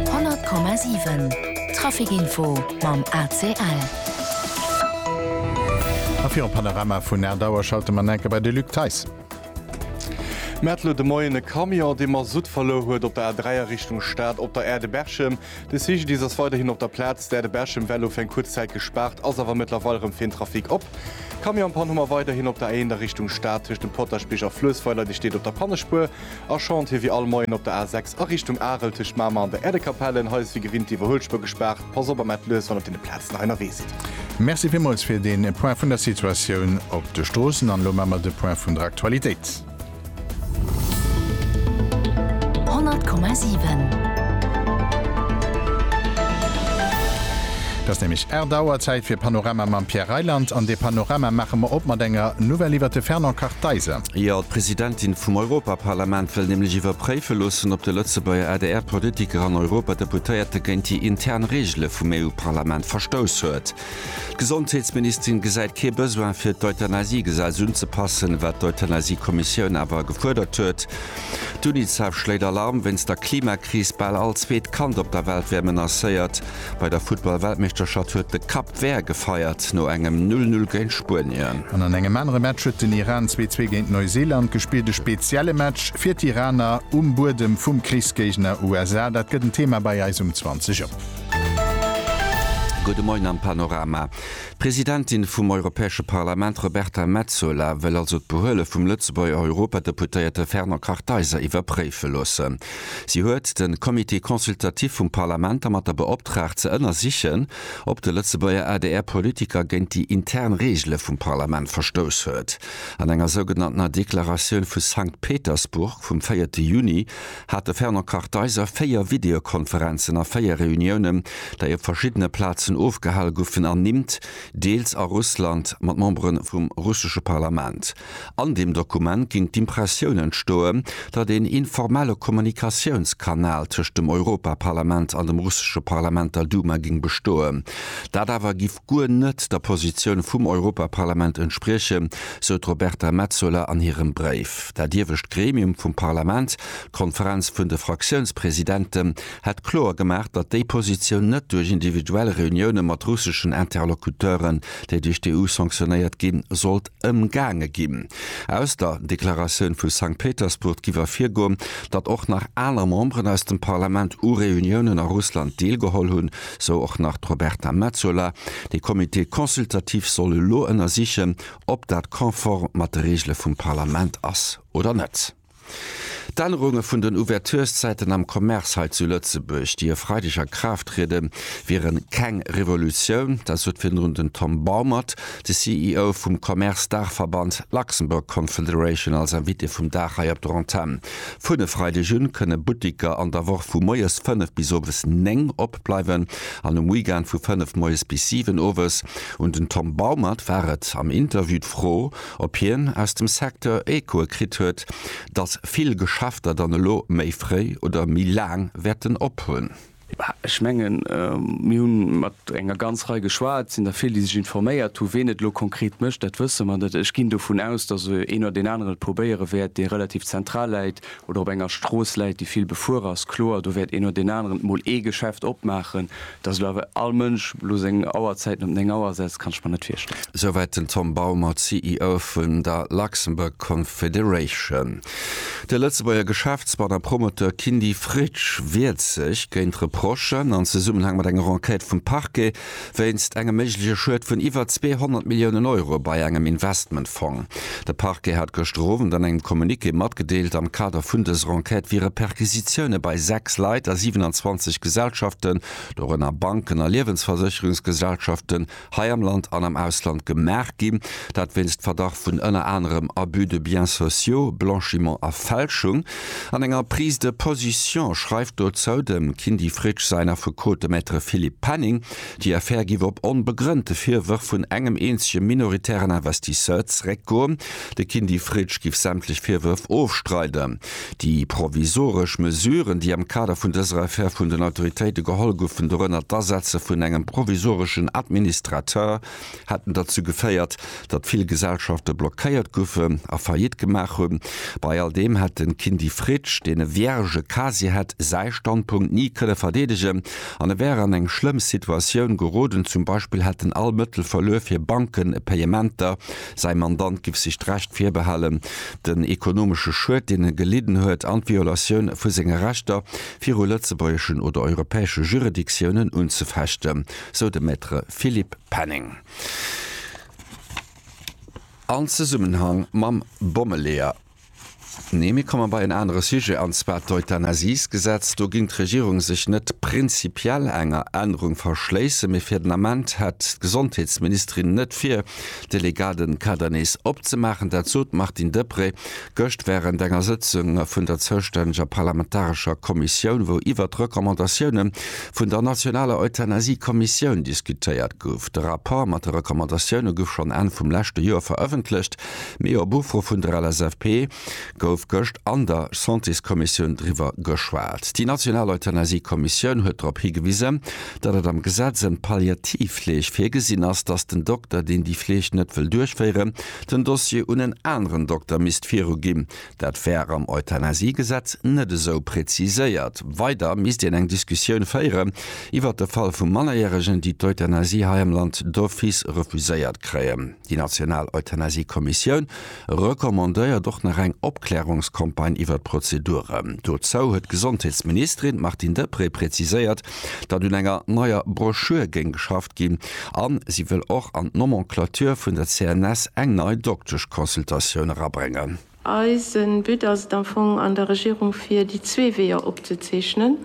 100,7 Traficinfo mam ACL. A fir en Panorama vun Aert Auer schalte mer enker bei de Luc Theis. Mir hat elo de Moien e Camion, dee Masutt verluer huet op der A3 a Richtung Stad op der Aire de Berchem. De CGDIS ass weiderhin op der Plaz. D'Aire de Berchem war elo fir eng kuerz Zäit gespaart, ass awer mëttlerweil erëm fir den Trafic op. Camionspann hu mer weiderhin op der A1 a Richtung Stad tëscht dem Potaschbierg a Fluessweiler, déi steet op der Pannespuer. A schont hie wéi all Moien op der A 6 a Richtung Arel tëscht Mamer an der Äerdekapellen. Hei ass wéi gewinnt d'Iwwerhuelspur gespaart. Pass op a mellt lues, wann op deene Plazen nach ennerwee sidd. Merci villmools fir dee Point vun der Situatioun op de Stroossen. An elo maache mer de Point vun der Aktualitéit. 100,7. Et ass nämlech Är Dauer, Zäit fir Panorama mam Pierre Reyland. An dee Panorama maache mer op mat enger Nouvelle iwwert de Fernand Kartheiser. Jo, d'Presidentin vum Europaparlament wëll nämlech iwwerpréife loossen, ob de Lëtzebuerger ADR-Politiker an Europadeputéierte géint déi intern Reegele vum EU-Parlament verstouss huet. D'Gesondheetsministerin gesäit kee Besoin fir d'Euthanasiegesetz unzepassen, wat d'Euthanasie-Kommissioun awer gefuerdert huet. D'Unicef schléit Alarm wéinst der Klimakris, Bal all zweet Kand op der Welt wär menacéiert. Bei der Futtball-Weltmeeschterschaft huet de Cap Vert gefeiert no engem 'Null Null' géint Spuenien. An an engem anere Match huet den Iran zwee Zwee géint Neuseeland gespillt. E spezielle Match fir d'Iraner um Buedem vum Krichsgéigner USA. Dat gëtt en Thema bei eis um 20 Auer. Gudde Moien am Panorama. D'Presidentin vum Europäesche Parlament Roberta Metsola wëll also d'Behuele vum Lëtzebuerger Europadeputéierte Fernand Kartheiser iwwerpréife loossen. Si huet de Comité consultatif vum Parlament dermat der beoptraagt ze ënnersichen, ob de Lëtzebuerger ADR-Politiker géint déi intern Reegele vum Parlament verstouss huet. An enger sougenanntener Deklaratioun vu Sankt Petersburg vum véierte Juni hat de Fernand Kartheiser véier Videokonferenzen a véier Reuniounen, dei op verschiddene Plazen ofgehal guffen, ernimmt, deels a Russland, mat Membere vum russesche Parlament. An deem Dokument ginn d'Impressioun entstoen, datt een informelle Kommunikatiounskanal tëscht dem Europaparlament an dem russesche Parlament, der Duma, géing bestoen. Dat awer giff guer net der Positioun vum Europaparlament entspriechen, sou d'Roberta Metsola an hirem Bréif. Dat iewescht Gremium vum Parlament, d'Konferenz vun de Fraktiounspresidenten, hätt kloer gemaach, datt déi Positioun net duerch individuell Reunioune mat russeschen Interlocuteuren, déi duerch d'EU sanctionéiert ginn, sollt Ëmgaange ginn. Aus der Deklaratioun vu Sankt Petersburg giff ervirgoen, datt och nach aner Memberen aus dem Parlament u Reuniounen a Russland deelgeholl hunn, sou och nach d'Roberta Metsola. Dee Comité consultatif soll elo ënnersichen, ob dat konform mat de Reegele vum Parlament ass oder net. D'Ännerunge vun den Ouverturszäiten am Commerce hei zu Lëtzebuerg, déi e Freideg a Kraaft trieden, wiere keng Revolutioun. Dat sot virdrun den Tom Baumert, de CEO vum Commerce-Daachverband Luxembourg Confederation, als Invité vum Dag hei op der Antenn. Vun e Freideg u kënne Butteker an der Woch vu moies 5 bis owes 9 opbleiwen an um Weekend vu 5 moies bis 7 owes. Un den Tom Baumert war et am Interview d'Fro, Ob hien aus dem Secteur Echoe kritt huet, datt vill Geschäfter dann elo méi fréi oder méi laang wäerten op hunn? Ech mengen, mir hu mat enger ganz Rei geschwat. Et sinn der vill, déi sech informéiert hunn. Ween et elo konkret mécht, dat wësse mer net. Ech ginn dovun aus, datt een oder deen aneren et probéiere wäert, dee relativ zentral läit. oder op enger Strooss läit, déi vill befuer ass, kloer, do wäert een no deen aneren mol ee Geschäft opmaachen. Datt elo awer all Mënsch elo seng Auerzäiten op 9 Auer setzt, kann ech mer net virstellen. Souwäit den Tom Baumer, CEO vun der Luxembourg Confederation. De Lëtzebuerger Geschäftsmann a Promoteur Kindy Fritsch wiert sech géint Reprochen an Zesummenhang mat enger Enquête vum Parquet Wéinst engem méigleche Schued vun iwwer 200 Milliounen Euro bei engem Investmentfong. De Parquet hat gëschter Owend an engem Communiqué matgedeelt, am Kader vun dëser Enquête wiere Perquisitioune bei 6 Leit a 27 Gesellschaften, dorënner Banken a Liewensversécherungsgesellschaften, hei am Land an am Ausland gemaach ginn. Dat wéinst Verdacht vun ënner anerem Abus de biens sociaux, Blanchiment a Fälschung. An enger Prise de position schreift dozou dem Kindy Fritsch säin Affekot, de Maître Philippe Penning, déi Affär giff op onbegrënnte Virwërf vun engem eenzege minoritären Investisseur zeréckgoen. De Kindy Fritsch giff sämtlech Virwërf ofstreiden. Déi provisoresch Mesuren, déi am Kader vun dëser Affär vun den Autoritéite geholl goufen, dorënner d'Asetze vun engem provisoreschen Administrateur, hätten derzou geféiert, datt vill Gesellschafte blockéiert goufen a Faillite gemaach hunn. Bei all deem hätt de Kindy Fritsch, deen e Vierge casier hätt, säi Standpunkt ni kënne verdeedegen an e wär an eng schlëmm Situatioun geroden. Zum Beispill hätten all Mëttel verluer fir Bankenpayementer, säi Mandant giff sech d'Recht virbehalen, den ekonomesche Schued, deen e gelidden huet an d'Violatioun vu senge Rechter viru lëtzebuergeschen oder europäesche Juridictiounen unzefechten. sou de Maître Philippe Penning an Zesummenhang mam Bommeleeër. Nee, mir komme bei en anere Sujet, an zwar d'Euthanasiesgesetz. Do géing d'Regierung sech net prinzipiell enger Ännerung verschléissen, mee fir den Ament hätt d'Gesondheetsministerin net vir, de legale Kader nees opzemaachen. Dat sot d'Martine Deprez Gëscht wärend enger Sëtzung vun der zoustänneger parlamentarescher Kommissioun, wou iwwert d'Recommandatioune vun der nationaler Euthanasie-Kommissioun diskutéiert gouf. De Rapport mat de Recommandatioune gouf schonn Enn vum leschte Joer verëffentlecht, mee op Ufro vun der LSAP gouf gëscht an der Santéskommissioun driwwer geschwat. Déi national Euthanasie-Kommissioun huet drop higewisen, datt et am Gesetz ëm d'Palliativfleeg virgesinn ass, datt den Dokter, deen déi Fleeg net wëll duerchféieren, den Dossier un en aneren Dokter misst viru ginn. Dat wär am Euthanasiegesetz net esou preziséiert. Weider misst een eng Diskussioun féieren iwwert de Fall vu Mannerjäregen, déi d'Euthanasie hei am Land d'office refuséiert kréien. Déi national Euthanasiekommissioun recommandéiert och nach eng Opklärungscampagne iwwert d'Prozedure. Dozou huet d'Gesondheetsministerin Martine Deprez preziséiert, datt un enger neier Broschür géing geschafft ginn a si wëll och an d'Nomenclature vun der CNS eng nei Dokteschconsultatioun erabréngen. Eise But ass et am Fong an der Regierung fir déi zwee Weeër opzezeechnen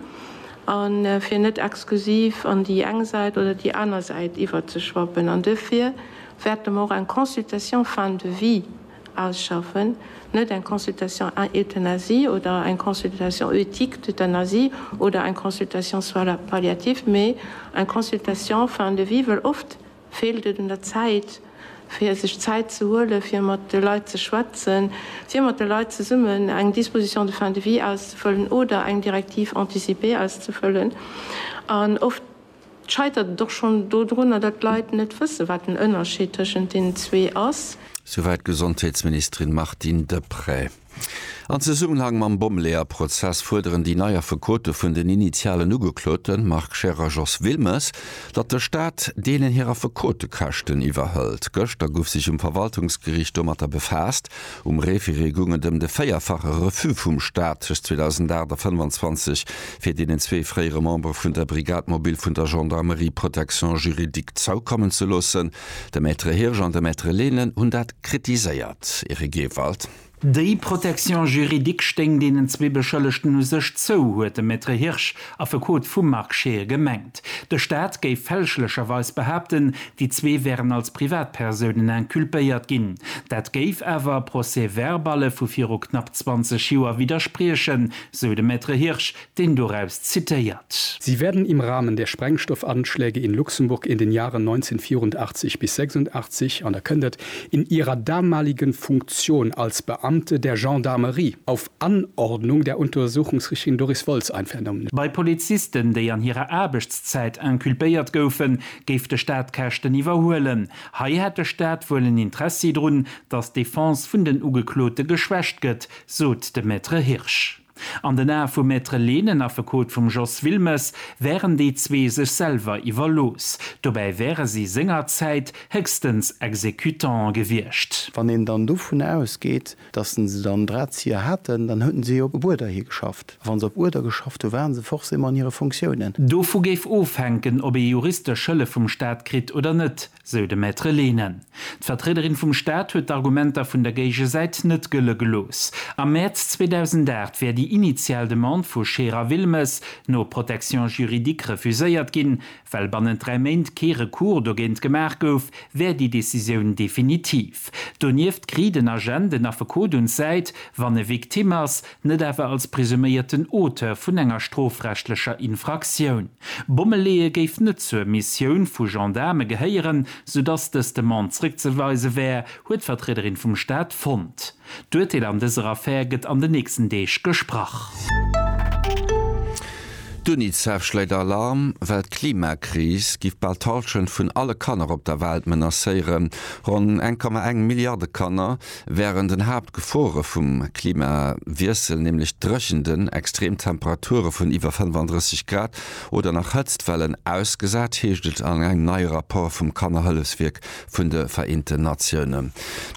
a fir net exklusiv an déi eng Säit oder déi aner Säit iwwerzeschwappen. An duerfir wäerte mer och eng Consultation fin de vie Ausschaffen, net eng Consultation Euthanasie oder eng Consultation Ethique d'Euthanasie oder eng Consultation Soins palliatifs, mee eng Consultation Fin de vie, well oft feelt et un der Zäit, fir sech Zäit ze huelen, fir mat de Leit ze schwätzen, fir mat de Leit zesummen eng Disposition de fin de vie auszefëllen oder eng Directive anticipée auszefëllen an oft. Et scheitert et och schonn dodrunner, datt d'Leit net wëssen, wat den Ënnerscheed tëschent deenen zwee ass. Souwäit d'Gesondheetsministerin Martine Deprez. An Zesummenhang mam Bommeleeër-Prozess fuerderen déi nei Affekote vun den initialen Ugeklote Marc Scheer a Jos Wilmes, datt de Staat deenen hir Affekotekäschten iwwerhëlt. Gëschter gouf sech um Verwaltungsgeriicht domatter befaasst, Um Référé goung et ëm de véierfache Refus vum Staat tëscht 2008 a 25 fir deenen zwee fréiere Membere vun der Brigade mobile vun der Gendarmerie Protection juridique zoukommen ze loossen. De Maître Hirsch an de Maître Lehnen hunn dat kritiséiert. Eric Ewald. Déi Protection juridique stéing deenen zwee Beschëllegten u sech zou, huet de Maître Hirsch Affekot vum Marc Scheer, gemengt. De Staat géif fälschlecherweis behaapten, déi zwee wären als Privatpersounen inculpéiert ginn. Dat géif awer Procès-verballe vu viru knapp 20 Joer widderspriechen, sou de Maître Hirsch, deen doraus zitéiert. Sie werden im Rahmen der Sprengstoffanschläge in Luxemburg in den Jahren 1984 bis 86, an da kënnt et, in ihrer damaligen Funktion als Beamte der Gendarmerie auf Anordnung der Untersuchungsrichtlin Doris Woltz einvernommen. Bei Polizisten, déi an hirer Aarbechtszäit inculpéiert goufen, géif de Staat Käschten iwwerhuelen. Hei hätt de Staat wuel en Interessi drun, datt d'Defense vun den Ugeklote geschwächt gëtt, sot de Maître Hirsch. An den Ae vum Maître Lehnen, Affekot vum Jos Wilmes, wären déi zwee sech selwer iwwerlooss. Dobäi wäre si sengerzäit héchstens Exécutantë gewiescht. Wann een dann dovun ausgeet, Dass se dann Drahtzieher haten, dann houten se jo op Uerder hi geschafft. A wann se op Uerder geschafft hu waren se forcément an hire Fonctiounen. Dovu géif ofhänken, ob ee juristesch Hëllef vum Staat kritt oder net, sou de Maître Lehne. D'Vertriederin vum Staat huet d'Argumenter vun der Géigesäit net gëlle gelooss. Am Mäerz 2008 wär déi initial Demande vu Scherer-Wilmes no Protection juridique refuséiert ginn, Well bannent dräi Méint kee Recours dogéint gemaach gouf, wär déi Decisioun definitiv. Donieft kriit en Agent den Affekot un d'Säit, wann e Victime ass, net awer als presuméierten Auteur vun enger strofrechtlecher Infraktioun. Bomme leeë géif net zur Missioun vu Gendaarme gehéieren, soudatt dës Demande zréckzeweise wär, huet d'Vertriederin vum Staat fonnt. D'Urteel an dëser Affär gëtt an den nächsten Deeg gesprach. D'Unicef schléit Alarm, well d'Klimakris giff bal d'Halschent vun alle Kanner op der Welt menacéieren. Ronn 1,1 Milliarde Kanner wären den Haaptgefore vum Klimawiessel, nämlech Dréchenten, extrem Temperature vun iwwer 35 Grad oder nach Hëtztwellen ausgesat, heescht et an engem neie Rapport vum Kannerhëllefswierk vun de Vereenten Natiounen.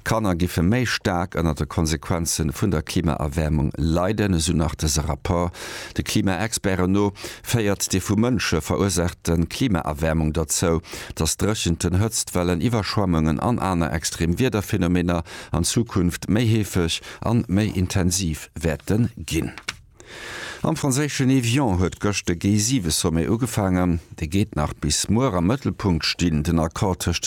D'Kanner giffe méi staark ënner de Konsequenze vun der Klimaerwäermung leiden, esou nach dëse Rapport. De Klimaexperten no féiert déi vu Mënsche verursaachte Klimaerwäermung derzou, datt Dréchenten, Hëtztwellen, Iwwerschwemmungen an aner extrem Wiederphenomener an Zukunft méi heefeg an méi intensiv wäerte ginn. Am franséischen Évian huet gëscht de G7-Sommet ugefaangen. Dee geet nach bis muer am Mëttelpunkt stinn. Den Accord tëscht